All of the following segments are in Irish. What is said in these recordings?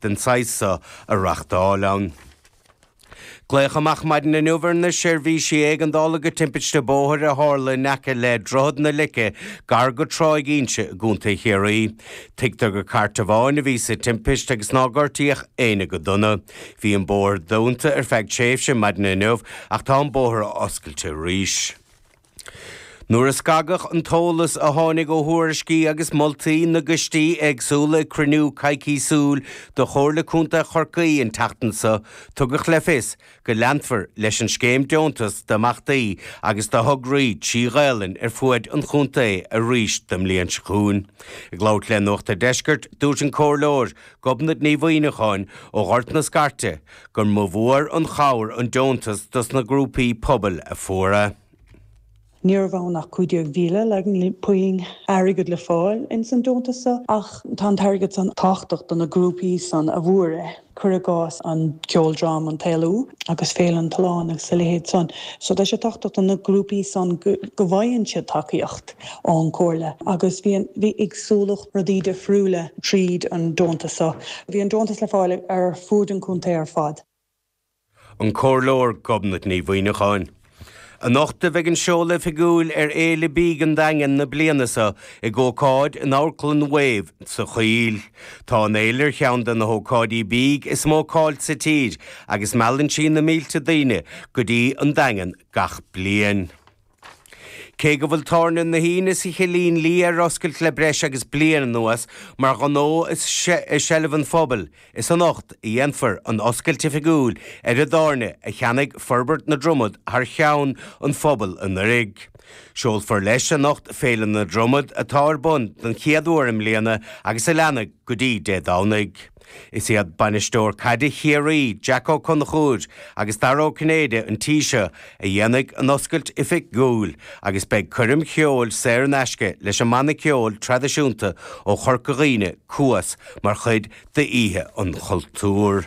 den saghas seo a reachtáil ann. Glaoch amach maidin inniu ar na seirbhísí éigeandála go timpiste bóthair a tharla in aice le Droichead na Leice gar go Tráigh Inse i gContae Chiarraí. Tuigtear gur chairt amháin a bhí sa timpist agus ná gortaíodh éinne go dona. Bhí an bóthar dúnta ar feadh tréimhse maidin inniu ach tá an bóthar oscailte arís. Nuair a scagadh an t-eolas a tháinig ó thuairiscí agus moltaí na gcoistí éagsúla ag cruinniú coicísiúil de Chomhairle Contae Chorcaí an tseachtain seo, tugadh le fios go leanfar leis an scéim deontas d'imeachtaí agus do thograí trí Ghaelainn ar fuaid an chontae arís don mbliain seo chugainn. Ag labhairt le Nuacht an Deiscirt, dúirt an Comhairleoir Gobnait Ní Mhuimhneacháin ó Ghort na Scairte, gur mór mór an chabhair an deontas dos na grúpaí pobail a fuair é. Ní raibh ann ach 15,000 ní raibh puinn airgid le fáil ins an deontas so, ach tá an t-airgead san tábhachtach do na grúpaí san a fuair é, cur i gcás an ceoldráma An tÉalú agus Féile an tSuláin agus a leithéid sin. So tá sé tábhachtach do na grúpaí san go bhfaigheann siad tacaíocht. ón gComhairle agus bhí an-éagsúlacht rudaí difriúla tríd an deontas seo. Bhí an deontas le fáil ar fuaid an chontae ar fad. An Comhairleoir Gobnait Ní Mhuimhneacháin. Anocht a bheidh an seoladh oifigiúil ar Fhéile Bídh an Daingin na bliana seo ag ócáid in Amharclann Wave sa Choill. Tá an fhéile ar cheann de na hócáidí bídh is mó cáil sa tír agus meallann sí na mílte daoine go dtí an Daingean gach bliain. Cé go bhfuil tábhairne na hUíne sa Chillín Liath ar oscailt le breis agus bliain anuas mar ghnó i seilbh an phobail, is anocht a dhéanfar an oscailt oifigiúil ar an dtábhairne a cheannaigh Forbairt na Dromad thar cheann an phobail anuraidh. Seolfar leis anocht Féile na Dromad atá ar bun don chéad uair i mbliana agus a leanfaidh go dtí Dé Domhnaigh. Is iad bainisteoir caide Chiarraí, Jack Ó Conchúir, agus Dara Ó Cinnéide an tí seo a dhéanfaidh an oscailt oifigiúil agus beidh coirm cheoil saor in aisce leis an mbanna ceoil traidisiúnta ó Chorca Dhuibhne, Cuas, mar chuid d'Oíche an Chultúir.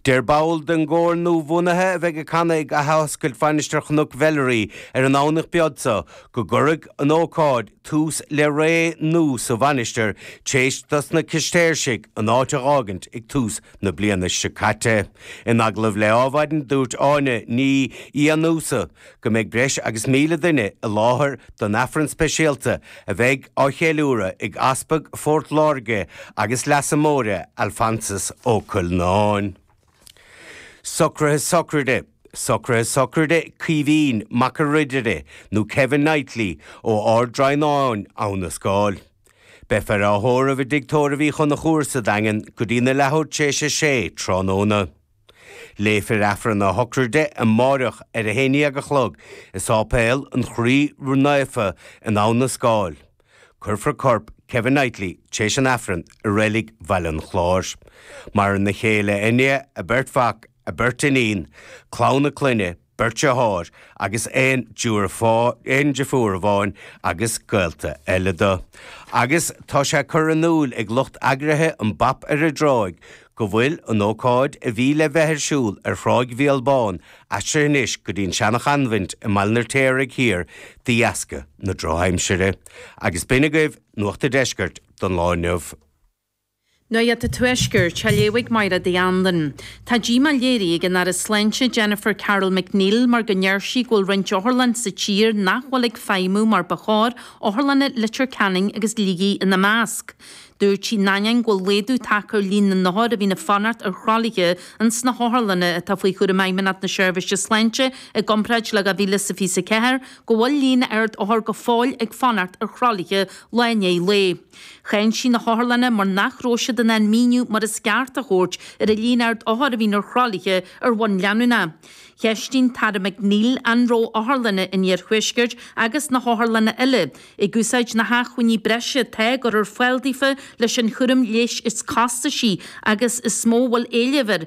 Deir ball den gcór nuabhunaithe a bheidh ag canadh ag athoscailt Mhainistir Chnoc Mheilearaí ar an nDomhnach beag seo go gcuirfidh an ócáid tús le ré nú sa mhainistir t'éis do sna Cistéirsigh an áit a dh'fhágaint ag tús na bliana seo caite. In agallamh le Ádhmhaidin, dúirt Áine Ní Fhiannúsa go mbeidh breis agus míle duine i láthair don Aifreann speisialta a bheidh á cheiliúradh ag Easpag Phort Láirge agus Leasa Móir Alphonsus Ó Cuilleanáin. Socruithe Sochraide Socruithe Sochraide Caoimhín Mac an Ridire nó Kevin Knightly ó Ard Draighneáin Abha na Scáil. Beifear á thórramh i dtigh tórraimh Uí Chonchúir sa Daingean go dtí na leathuair tar éis a sé tráthnóna. Léifear Aifreann a Shochraide amáireach ar a haon dhéag a chlog i Sáipéal an Chroí Ró-Naofa in Abha na Scáil. Cuirfear corp Kevin Knightly tar éis an Aifrinn i reilig Bhaile an Chláir. Maireann a chéile Enid, a beirt mhac, a beirt iníon, clann a clainne, beirt dheartháir agus aon deirfiúr amháin agus gaolta eile do. Agus tá sé curtha in iúil ag lucht eagraithe an Bop ar an dTráigh, go bhfuil an ócáid a bhí le bheith ar siúl ar Thráigh Bhéal Bán aistrithe anois go dtí an seana-choinbhint i mBaile an Fheirtéaraigh Thiar de dheasca na drochaimsire. Agus b'in agaibh Nuacht a' Deiscirt don lá inniu. Nuacht a' Tuaiscirt, a léifidh Máire D. Andain. Tá díomá léirithe ag an Aire Sláinte Jennifer Carroll MacNeill mar go ndeir sí go bhfuil roinnt otharlann sa tír nach bhfuil ag feidhmiú mar ba chóir, Otharlanna Leitir Ceanainn agus Shligigh ina measc. Dúirt sí in ainneoin go bhfuil laghdú tagtha ar líon na n-othar a bhíonn ag fanacht ar thralaithe in sna hotharlanna atá faoi chúram Fheidhmeannacht na Seirbhíse Sláinte i gcomparáid le 2024, go bhfuil líon ard othar go fóill ag fanacht ar thralaithe lá i ndiaidh lae. Cháin sí na hotharlanna mar nach raibh siad in ann míniú mar is ceart a thabhairt ar an líon ard othar a bhíonn ar thralaithe ar bhonn leanúnach. Cheistigh an tAire MacNeill an raibh otharlanna an Iarthuaiscirt agus na hotharlanna eile, Ag úsáid na hacmhainní breise atá curtha ar fáil daofa leis an chúram leighis is costaisí agus is mó a bhfuil éileamh air